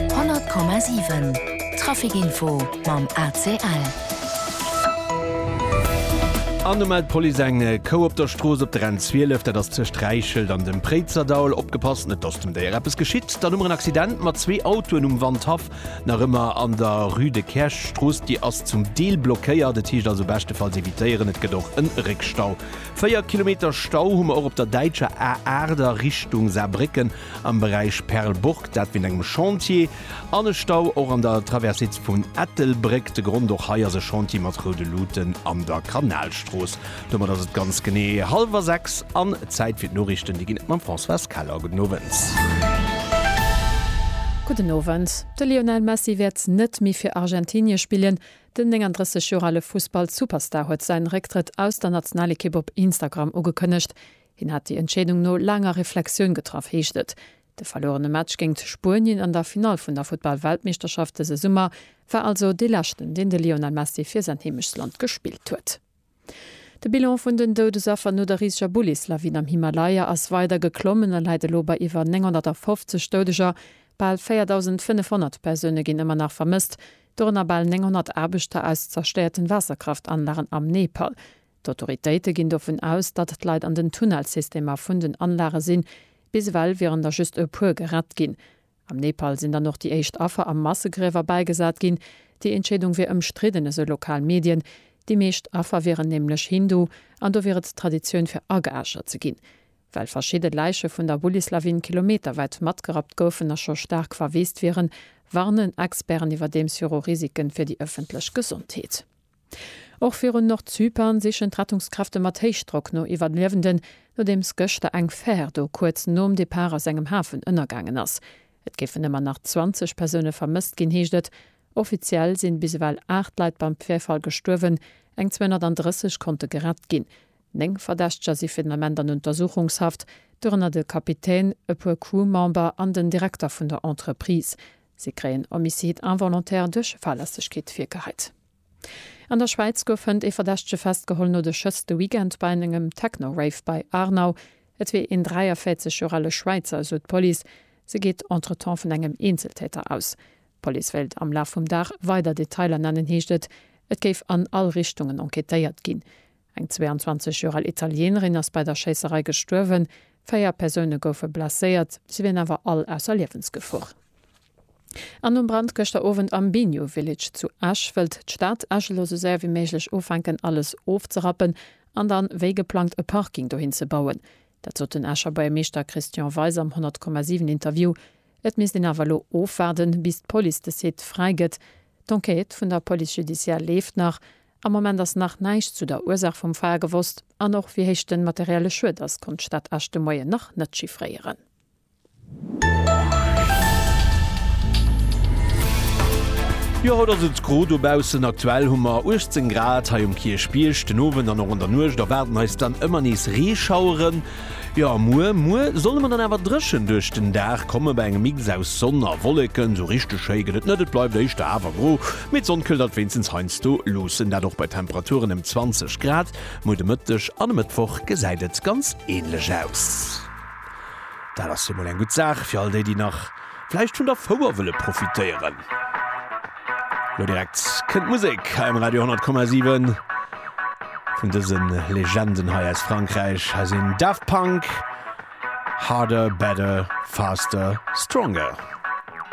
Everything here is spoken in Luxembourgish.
100,7 Trafic Info mam ACL. An do mellt d'Police eng Kou op der Strooss op der N12, dat ass tëscht Räichelt an dem Préizerdaul. Opgepasst, net dass dem Déier eppes geschitt. Dann hu mer en Accident mat zwee Autoen um Wandhaff, nach ëmmer an der Rue de Kersch. D'Strooss, déi ass zum Deel blockéiert, et heescht also beschtefalls evitéieren. Et gëtt och e Réckstau. Véier Kilometer Stau hu mer och op der däitscher A8 a Richtung Saarbrécken. am Beräich Perlburg, dat wéint engem Chantier, an e Stau och an der Traversée vun Ettelbréck. De Grond, och hei ass e Chantier mat roude Luuten an der Kanalstrooss. Domat ass et ganz genee hallwer 6 an Zäit fir d'Noriichten. Déi ginn et mam Françoise Keller. Gudden Owend. Gudden Owend. De Lionel Messi wäert net méi fir Argentinie spillen. Den 39 Joer ale Fussball-Superstar huet säin Récktrëtt aus der Nationalekipp op Instagram ugekënnegt. Hien hätt déi Entscheedung no laanger Reflexioun getraff, heescht et. De verluerene Match géingt Spuenien an der Finall vun der Futtball-Weltmeeschterschaft dëse Summer war also dee leschten, deen de Lionel Messi fir säin Heemechtsland gespillt huet. De Bilan vun den Doudesaffer no der riseger Bullislawin am Himalaya ass weider geklommen a läit elo bei iwwer 950 Doudeger. Bal 4.500 Persoune ginn ëmmer nach vermësst, dorënner bal 900 Aarbechter aus zerstéierten Waasserkraftanlagen am Nepal. D'Autoritéite ginn dovun aus, datt d'Leit an den Tunnelsystemer vun den Anlage sinn. Bis ewell wieren der just e puer gerett ginn. Am Nepal sinn dann och déi éischt Affer a Massegriewer bäigesat ginn. Déi Entscheedung wier ëmstridden, esou lokal Medien. Déi meescht Affer wieren nämlech Hindu an do wier et Traditioun fir ageäschert ze ginn. Well verschidde Läiche vun der Bullislawin kilometerwäit matgerappt goufen a scho staark verweest wieren, warnen Experten iwwerdeems viru Risike fir déi ëffentlech Gesondheet. Och virun Nordzypern sichen d'Rettungskräfte mat Héichdrock no Iwwerliewenden, nodeems gëschter eng Fär do kuerz nom Depart aus engem Hafen ënnergaangen ass. Et géifen ëmmer nach 20 Persoune vermësst ginn, heescht et. Offiziell sinn bis ewell 8 Leit beim Virfall gestuerwen, eng 230 konnte gerett ginn. Néng Verdächteger si fir den Ament an Untersuchungshaft, dorënner de Kapitän, e puer Crew-Member an den Direkter vun der Entreprise. Si kréien Homicide involontaire duerch Fahrlässegkeet virgehäit. An der Schwäiz gouf hënt ee Verdächtege festgeholl no de Schëss de Weekend bei engem Techno-Rave bei Aarnau. Et wier een 43 Joer ale Schwäizer, esou d'Police. Se geet entretemps vun engem Eenzeltäter aus. D'Police wéilt am Laf vum Dag weider Detailer nennen, heescht et. Et géif an all Richtungen enquêtéiert ginn. Eng 22 Joer al Italieenerin ass bei der Schéisserei gestuerwen, véier Persoune goufe blesséiert, si wieren awer all ausser Liewensgefor. An nom Brand gëschter Owend am Biniou Village zu Esch wëllt d'Stad Esch elo sou séier wéi méiglech ufänken alles ofzerappen an dann wéi geplangt e Parking dohin ze bauen. Dat sot den Escher Buergermeeschter Christian Weis am 100,7 Interview. Et misst een awer elo ofwaarden, bis d'Police de Site fräi gëtt. D'Enquête vun der Police judiciaire leeft nach Am Moment ass nach näischt zu der Ursaach vum Feier gewosst an och wéi héich de materielle Schued ass, konnt d'Stad Esch de Moien nach net chiffréieren. Jo haut ass et gro dobaussen, aktuell hu mer 18 Grad hei um Kierchbierg. Den Owend an och an der Nuecht erwaarden eis dann ëmmer nees Reeschaueren. Jo a muer, muer solle mer dann awer dréchen duerch den Dag komme bei engem Mix aus Sonn a Wolleken. Sou richteg schéi gëtt et net, et bleift éischter awer gro. Mee d'Sonn këllt alt wéinstens heiansdo luussen, dat och bei Temperaturen ëm 20 Grad. Muer de Mëtteg an e Mëttwoch gesäit et ganz änlech aus. Dat ass jo mol eng gutt Saach fir all déi, déi nach vläicht vun der Fouer wëlle profitéieren. Lo direkt kënnt d'Musek hei um Radio 10,7 vun dëse Legenden hei aus Frankräich. Hei sinn Daft Punk, Harder, Better, Faster, Stronger.